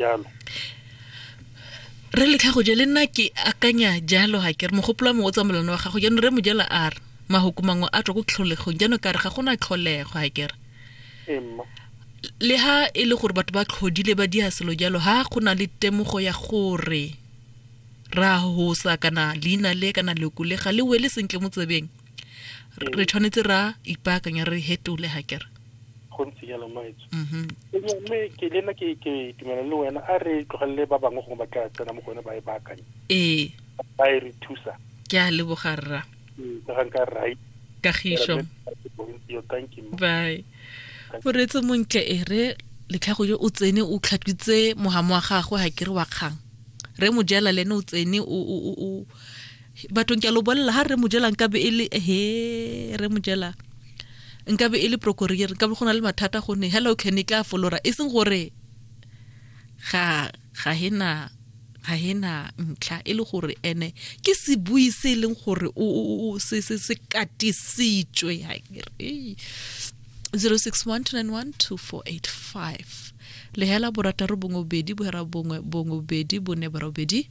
jalo re letlha go je le nna ke akanya jalo ga ke re mogopolo wa mongwe o tsamelano wa gago jaanong re mojela a re mahoko mangwe a tswa ko tlholegong jaanong ka re ga gona tlholego ga ke re le ha e le gore batho ba tlhodile ba dia selo jalo ha go na le temogo ya gore ra hosa kana leina le kana leko le ga le wele sentle mo tsebeng re tshwanetse ra ipaakanya re hetole ga kere go ntse jalo maetso mm-hmm. mme ke le nna ke tumela le wena a re tlogelele ba bangwe gongwe ba tla tsena mo go yone ba e baakanye ee ba e re thusa ke a leboga rra ee, ka ga nka right kagišo bye o retse montle e re letlhago yo o tsene o tlhatwitse mogamo wa gagwe ga kere wa kgang re mojela le ene o tsene o bathong ke a lo bolelela ga re mo jelang ka be e le he re mo jelang nka be e le procorier nka be go na le mathata go ne hello can e tla folora e seng gore ga ga hena ga hena ntlha e le gore ene ke sebui se e leng gore o se se se katisitswe ha ke re 0612912485 lehela borataro bongwe bobedi bohera bongwe bongwe bobedi bone barobedi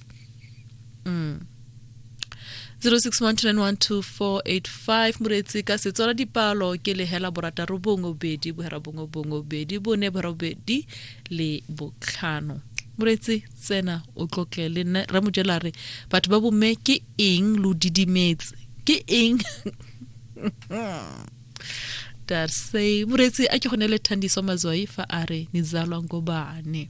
mm. 0612912485 moretsi ka setswala dipalo ke lehela borataro bongwe bobedi bohera bongwe bongwe bobedi bone bohera bobedi le botlhano moretsi tsena o tlotle le nna re mojela re batho ba bomme ke eng lo didimetse ke eng darse moretsi a ke go ne le thandiso mazwai fa a re nizalwa ngobane